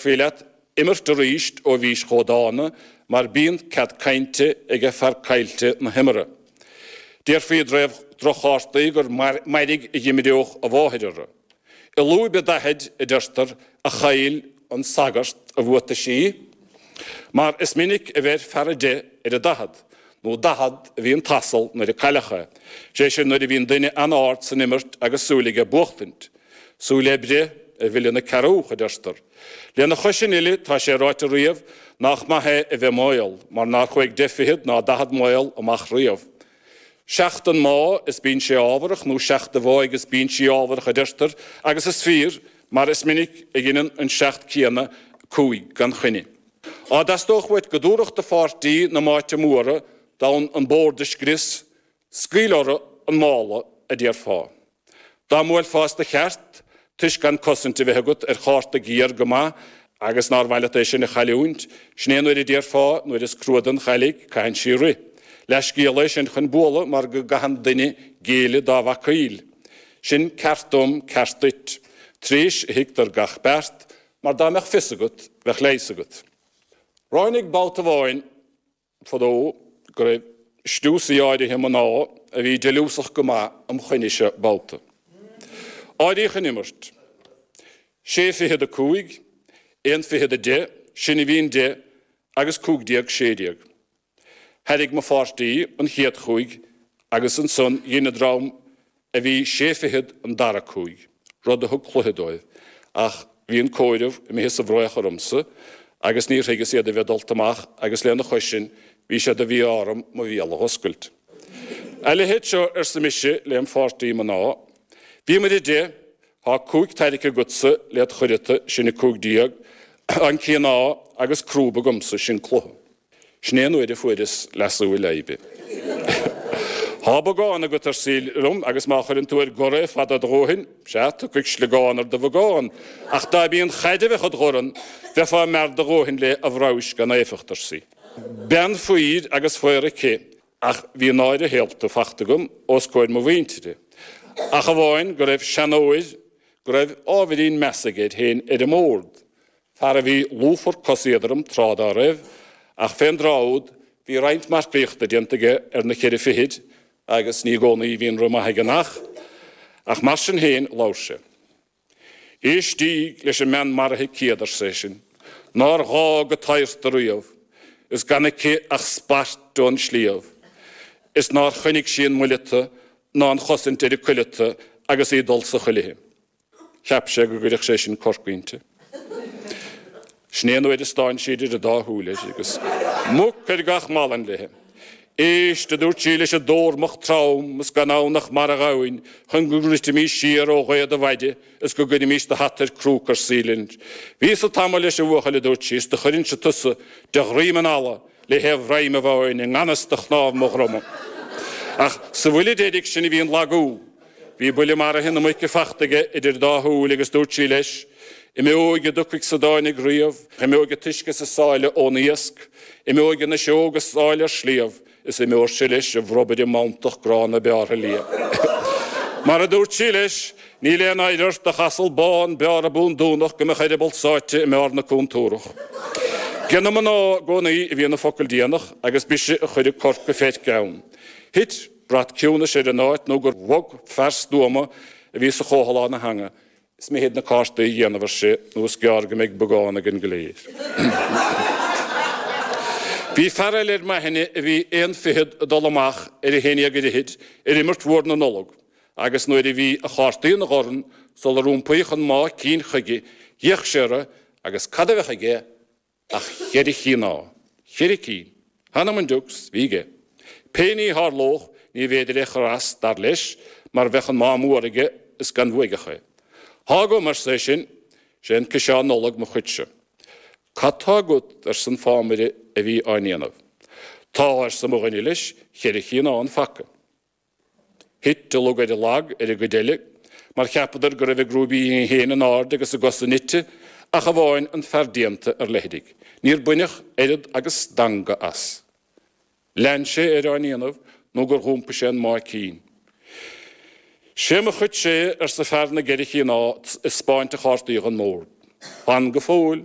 Bhí leat imirt arís ó bhís chomh dána mar bíonn cead cainte aige fear caillte na himeartha. Déarfaí i dtaobh droch-chártaí gur mairg a dh'imireodh a mháthair orthu. I lúib a daichid, a deirtear, a chaill an sagart a bhuataisí mar is minic a bheir fear a deich ar a daichead, nó daichead a bhí an t-asal nuair a cailleadh é, sé sin nuair a bhíonn duine an-ard san imirt agus súil aige buachtaint. Súil le breith a mhilleann an cearrbhach, a deirtear. Lena chois sin uile, tá sé ráite riamh nach maith é a bheith maol, mar nár chuaigh deich fichead ná daichead maol amach riamh. Seacht an mámh is bíonn sé ámharach, nó seacht an mháigh is bíonn sé ámharach, a deirtear, agus is fíor, mar is minic a dheineann an seacht céanna cúig gan choinne. Dá dteastódh uait go dtabharfadh do pháirtí na máite móra d'fhonn an bord a scrios, Scaoil orthu an mála, a déarfá. Dá mbuailfeá as do cheart, toisc gan cosaint a bheith agat ar chárta géar go maith agus nár mhaith leat é sin a chailliúint, sin é an uair a déarfá, nuair is crua don chailligh, caitheann sí rith. Leathscéal é sin chun bualadh mar go gcaitheann duine géilleadh dá bhacaíl. Sin ceart dom, ceart duit. Tréis a thuigtear gach beart, mar dá mbeadh fios agat, bheadh leigheas agat. Ráinig babhta amháin. fadó go raibh stiúsaí áirithe mná a bhí deiliúsach go maith im choinnese. Babhta áiríodh an imirt. Sé fichead a cúig, aon fichead a deich, sinne a bhí an deich agus cúig déag sé déag. Thairrig mo pháirtí an chéad chúig agus ansan dhein an dream a bhí sé fichead an dara cúig, rud a thug cluiche dóibh, ach bhí an comhaireamh imithe sa bhfraoch ormsa agus níor thuigeas iad a bheith dulta amach agus lena chois sin bhí sé de mhí-ádh orm mo bhéal a dh'oscailt. A leithéid seo arsa mise lem' pháirtí mná, Bhíomair a deich, thá cúig tairricthe agatsa le do chuireata, sin 15, an cíoná agus crúb agamsa, sin cluiche. Sin é an uair a fuaireas leasú i leidhbe. Thá bogán agat, arsaí liom, agus má chuireann tú ar gor é fada do dhóithin, sea, tiocfaidh sliogán ar do bhogán, ach dá mb'í an chaid a bheadh id dhorn, bheifeá mear do dhóithin léi, a bhraois gan éifeacht, arsaí. Bean faoir agus faor aici, ach bhí náire shaolta fachta agam os comhair mo mhuintire, ach amháin go raibh seanóir go raibh ábhairín measa aige air féin ar an mbord, fear a bhí lúfar cos éadrom tráth dá raibh, ach fén dtráth úd bhí roinnt marcaíochta déanta aige ar na ceithre fichid agus ní i gcónaí a bhíonn rith maith aige an each. Ach mar sin féin labhair sé. Éistíg leis an mbean maraithe céad, arsa é sin, nár ghá go taghart ariamh, is gan aici ach spairt ón sliabh, is nár choinnigh sí an muileata ná an chosaint ar a cuileata agus í ag dul sa chuilithe. Cheap sé go gcuirfeadh sé sin corc inti. Sin é an uair a stán sí idir an dá shúil air, agus muc ar gach malainn léi. Éist, a dúirt sí leis an dtórmach trom, is gan ann ach marbhghamhain chun go ndruidfimís siar ó ghaoth do mhaide is go gcuirfimís do hata ar crúca ar saol linn. Bhíos-sa tamall leis, a bhuachaill, a dúirt sí, is do chuirfinnse tusa de dhroim an fhalla le haon bhroim amháin i nganfhios do chnámh mo dhroma. Ach sa bhuille deiridh sin a bhí an lagú. Bhí buille maraithe na muice fachta aige idir dá shúil agus dúirt sí leis, Imeoidh a dtiocfaidh is a dtáinig riamh, imeoidh an t-uisce is an sáile ón iasc, imeoidh an fhuiseog is áille ar sliabh, is imeoirse leis a bhromaire mantach gránna bearrtha liath. Mar a dúirt sí leis, Níl aon oidhre ort, ach asal bán bearrtha bundúnach, go mbeadh a eireaball sáite i mbarr na cúntúrach. Ag na mná i gcónaí a bhíonn an focal déanach agus b'ise a chuir an corc go feirc ann. Thit. Brat ciúnais ar an áit nó gur bhog fear stuama a bhí sa chomhthalán a theanga. Is mithid na cártaí a dhéanamh, ar sé, nó is gearr go mbeidh beagán ag an gcléir. Bhí fear eile ar m'aithne a bhí aon fichead ag dul amach ar a haon déag ar fhichid ar imirt mhór na Nollag agus nuair a bhí a chártaí ina dhorn sular iompaíodh an mámh cinn chuige, d'fhéach sé orthu agus cad a bheadh aige Ach cheithre chíoná, cheithre chíoná! Th'anam on diucs, bhí aige. Pé ní a tharlódh níorbh fhéidir é a chur as, dar leis, mar bheadh an mámh mór aige is gan bhuaigeadh é. Thá agam, arsa é sin, sé an ciseán Nollag mo chuidse. Cad tá agat? arsa an fámaire a bhí á ndéanamh. Tá, arsa mo dhuine leis, cheithre chíoná an phaca. Thit an lug ar an lag ar an gcuid eile mar cheapadar go raibh a gcrúibíní féin in airde agus a gcosa nite ach amháin an fear déanta ar leithrigh. Níor baineadh oiread agus stangadh as. Lean sé air á ndéanamh nó gur iompaigh sé an mámh cinn. Sé mo chuidse é, arsa fear na gceithre chíoná ag taispeáint a chártaí don mbord. Fan go fóill!